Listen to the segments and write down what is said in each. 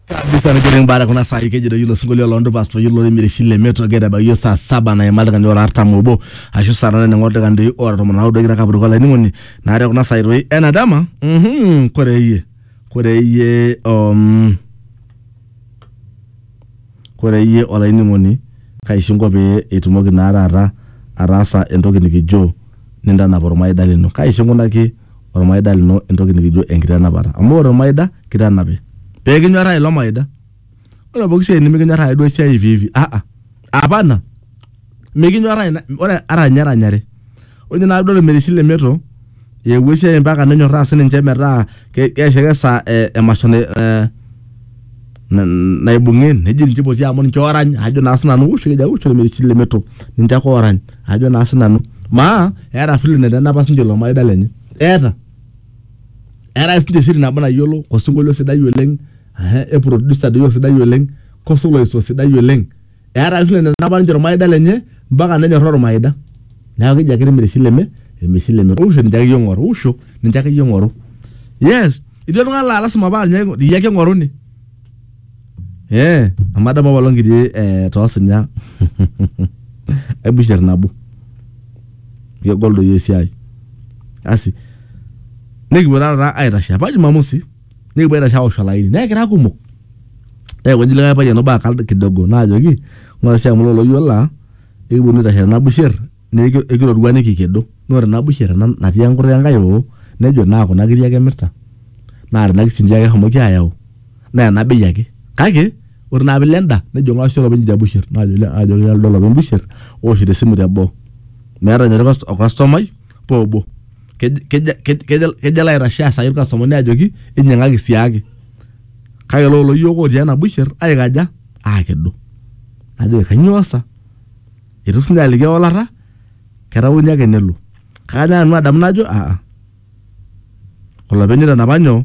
kabisa nikiring baada kuna saa ikeji doi ilo sinkolio loo ndupas peyie ilo limireshi le meto geta bayie saa saba naima iltung'ani ora artam obo ashu saa nane neng'or iltung'ani doi ora tomon naudo kira kapuruk olainining'oni naa te kuna saai doi ena dama mhm, kore iyie kore iyie um, kore iyie olainining'oni kaishinko pee itumoki naa taata ataasa entoki nikijo nintanap ormaida lino kaishinkunaki olmaida lino entoki nikijo enkitanapat. Amu ore olmaida kitanapi. Pee kinyorraa ilo maida. Ore pooki siai nimikinyorraa ake duo esiai hivi hivi aa apana. Mikinyorraa ina ore ata ninye eranyare. Ore ninye tenakata ilmereshi le meto eewuo esiai ompaka nenyorraa sii ninche metaa keishakesha emasho ee na- naibung'e neji ninche poti amu ninche orany ajo naa sinanu usho keja usho lemerisiti lemeto ninche ake orany ajo naa sinanu maa eeta vile netanapa sinche ilo maida lenye eeta eetae sinche siri nabo nayiolo kosinkolio sidai oleng ehe e producer doi osidai oleng kosolaisto sidai oleng. eeta vile nenapa ninche ormaida lenye mpaka nenyorraa ormaida neeku keji ake irmisileme irmisileme usho ninche akeyie ing'oru usho ninche akeyie ing'oru yes etii oltung'ani laa lasima paa ninye aing'o- iyie ake ing'oruni eh amu adamu apaelong kitii eh toosinya ai busher nabo kegol doi esiai asi nikipuo taata aitashe apa jumamosi nikipuo aitashe aosh olaini nekira kumok neekonji likae payian obo akal kidogo naajoki ng'ura sii amu loloyio laa ekiponu aitashe tena busher neeku ekirorua nikikedo naa ore ena busher ena natii enkutuk enkae oo nejo naa kuna kiri ake emirta naa tena kisinchia ake eshomoki ayau naa ena bei ake kake ore naa piilo enda nejo ng'ura sii olopeny idia busher naajoki nanu lido olopeny busher ooshito esimu teboo meeta ninye orkastomai. paa obo. Kejo alo aitashe aasaki ilkastomani ajoki inyiang'aki siaaki. Kake elo kulo yiok otii ena busher aikaja? Aakedo. Najoki kanyoo sa? Eitu siininye aliki ewalata, ketakueni ake nelo. Kake ajo nanu adamu najo aa olopeny oitanapa nyoo?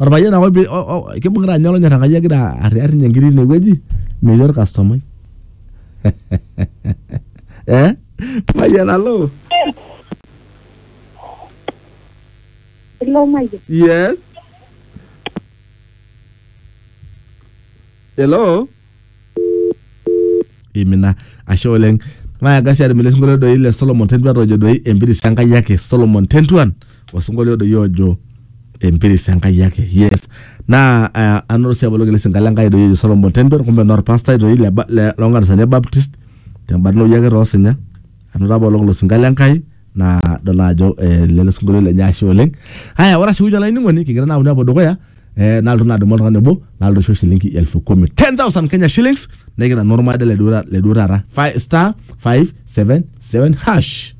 orpayian ake opi- o- o- kibung'ita ninye olonyor enkai egira arriar ninye nkiri tinewueji metii orkastomai eh mayian alo Hello, Mike. yes hello imina ashe oleng nayaga sii atum ele sinkolio doi le Solomon Tentuan ojo doi empiris Enkai ake Solomon Tentuan osinkolio doi ojo empiris Enkai ake yes naa eh, anoto sii aboloki ele sinkalo Enkai doi ojo Solomon Tentuan kumbe naa orpastai doi le ba- le- loonkanisani e Baptist tembarna ake toosinya anoto apa olong ilo sinkalo Enkai naa idol naa ajo eh, lele sinkolio lenye ashe oleng haya ore ashukunye olainining'oni kigira naa aponu apuo dukuya eh, nalotu naa adumu oltung'ani obo nalotu aisho shilingi elfu kumi 10000 kenya shillings nikira naa ormaida le duo ta- le duo taata Fi- star 577 hash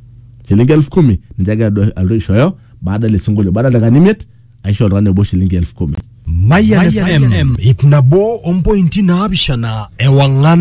shilingi elfu kumi ninche agira adu- alotu aishooyo baada ele sinkolio baada dakikani imiet aisho oltung'ani obo shilingi elfu kumi Mayan FM, ip nabo ompointi naapishana ewang'an